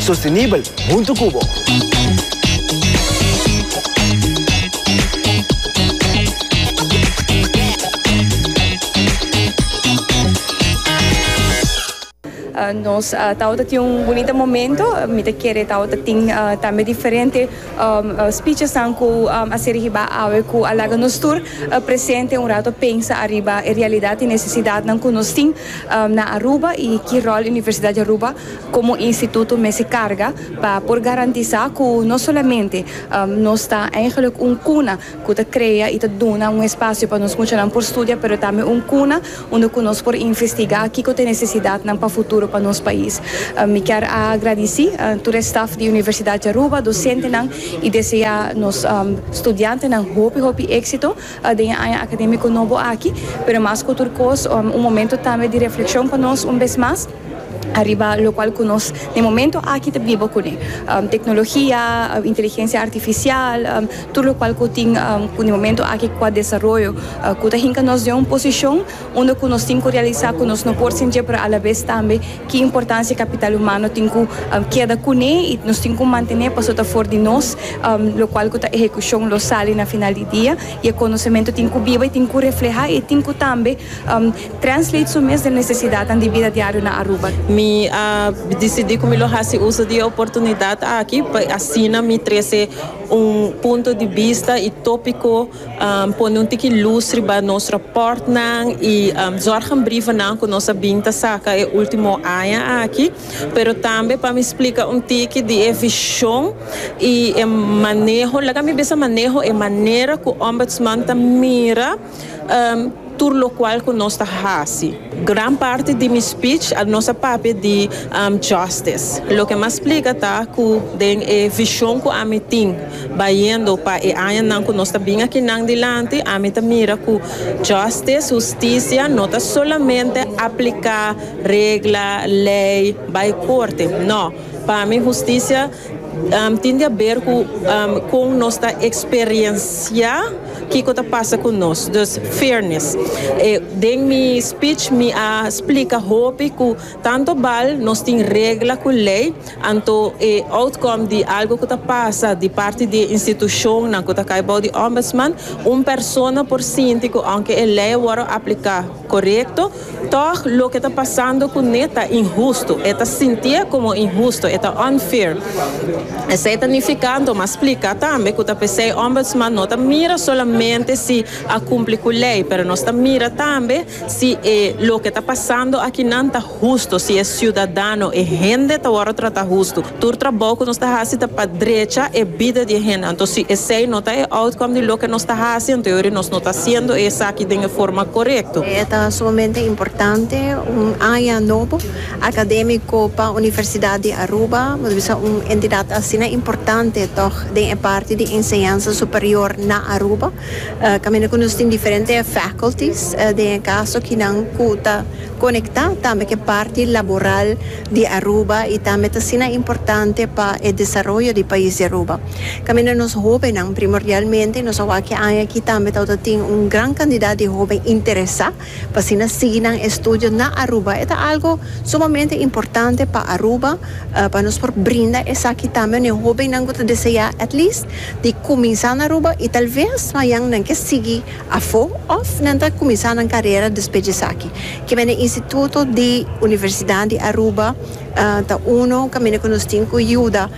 sostenibel huntu ku bo. Nos tabata tin un bunita momento, mi ta kere tabata tin tambe diferente spichesnan ku a ser hiba awe ku a laga nos tur presente un rato pensa ariba e realidat i nesesidatnan ku nos tin na Aruba i ki ròl Universidad di Aruba Komo instituto mester karga pa por garantisá ku no solamente nos ta eigenlijk un kuna ku ta krea i ta duna un espasio pa nos muchanan por studia pero tambe un kuna unda ku nos por investigá kiko ta e nesesidatnan pa futuro pa nos pais. Mi kier a gradisí tur e staf di Universidat di Aruba, dosentenan i deseá nos studiantenan hopi hopi éksito den e aña akadémiko nobo aki, pero mas ku tur kos un momento tambe di reflekshon pa nos un bes mas. ariba lokual ku nos den momento aki ta biba kuné. Teknologia, inteligensia artifisial, tur lokual ku tin ku den momento aki ku a desaroyo ku ta hinka nos den un posishon unda ku nos tin ku realisá ku nos no por sintié pero alabes tambe ki importansia kapital humano tin ku keda kuné i nos tin ku mantené paso ta for di nos lokual ku ta ehekushon lo sali na final di dia i e konosementu tin ku biba i tin ku reflehá i tin ku tambe Translate su mes den necesidadnan di bida diario na Aruba. Mi a dicidi cu mi lo haci uso di e oportunidad aki pa asina mi trece un punto di bista y topico, pone un tiki luz riba nos raportnan y zorghanbrievennan cu nos a bin ta saca e ultimo aña aki, pero tambe pa mi splica un tiki di e vision y e maneho, laga mi bisa maneho, e manera cu Ombudsman ta mira. tur lokual ku nos ta hasi. Gran parti di mi spich nos a papia di Justice. Loke mi a splika ta ku den e vishon ku ami tin bayendo pa e añanan ku nos ta bin akinan dilanti, ami ta mira ku Justice, hustisia, no ta solamente apliká regla, lei, bai korte. No, pa mi hustisia. Tin di haber cu con nos ta experiencia kico ta pasa cu nos. Dus, fairness. Den mi speech mi a splica hopi cu tanto bal nos tin regla cu ley, anto e outcome di algo cu ta pasa di parti di e institucionnan cu ta cay bao di Ombudsman, un persona por sinti cu aunke e ley a worde aplica, Korekto, tòg loke ta pasando ku ne ta inhustu. E ta sintié komo inhustu, e ta unfair. Esei ta nifikando, mas spliká tambe ku ta p'esei Ombudsman no ta mira solamente si a kumpli ku lei, pero nos ta mira tambe si e loke ta pasando akinan ta. Husto, si e siudadano, e hende ta wòrdu trata husto. Tur trabou ku nos ta hasi ta pa drecha e bida di e hende. Anto si esei no ta e outcome di loke nos ta hasi, anto yo ori nos no ta hasiendo esaki den e forma korekto. E ta sumamente importante un aña nobo akadémiko pa Universidat di Aruba. Nos bisa un entidat asina importante tòg den e parti di enseñansa superior na Aruba. Kaminda ku nos tin diferente faculties, den e kaso kinan ku ta. Conecta tambe cu e parti laboral di Aruba y tambe ta asina importante pa e desaroyo di pais di Aruba. Caminda nos hobennan primordialmente y nos a wak e aña aki tambe tawata tin un gran cantidad di hoben interesa pa asina sigui nan estudio na Aruba. E ta algo sumamente importante pa Aruba pa nos por brinda esaki tambe na e hobennan cu ta desea at least di cuminsa na Aruba y tal vez mayan nan ke sigui afo òf nan ta kuminsá nan karera despues di esaki. Kimen e instituto di Universidat di Aruba ta uno kaminda ku nos tin ku yuda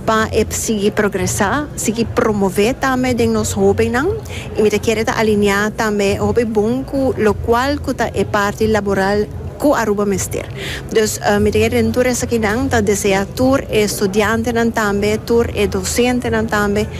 pa e sigui progresá, sigui promové tambe den nos hóbennan i mi ta kere ta alineá tambe hopi bon ku lokual ku ta e parti laboral ku Aruba mester. Dus mi ta kere den tur esakinan ta deseá tur e studiantenan tambe, tur e dosentenan tambe,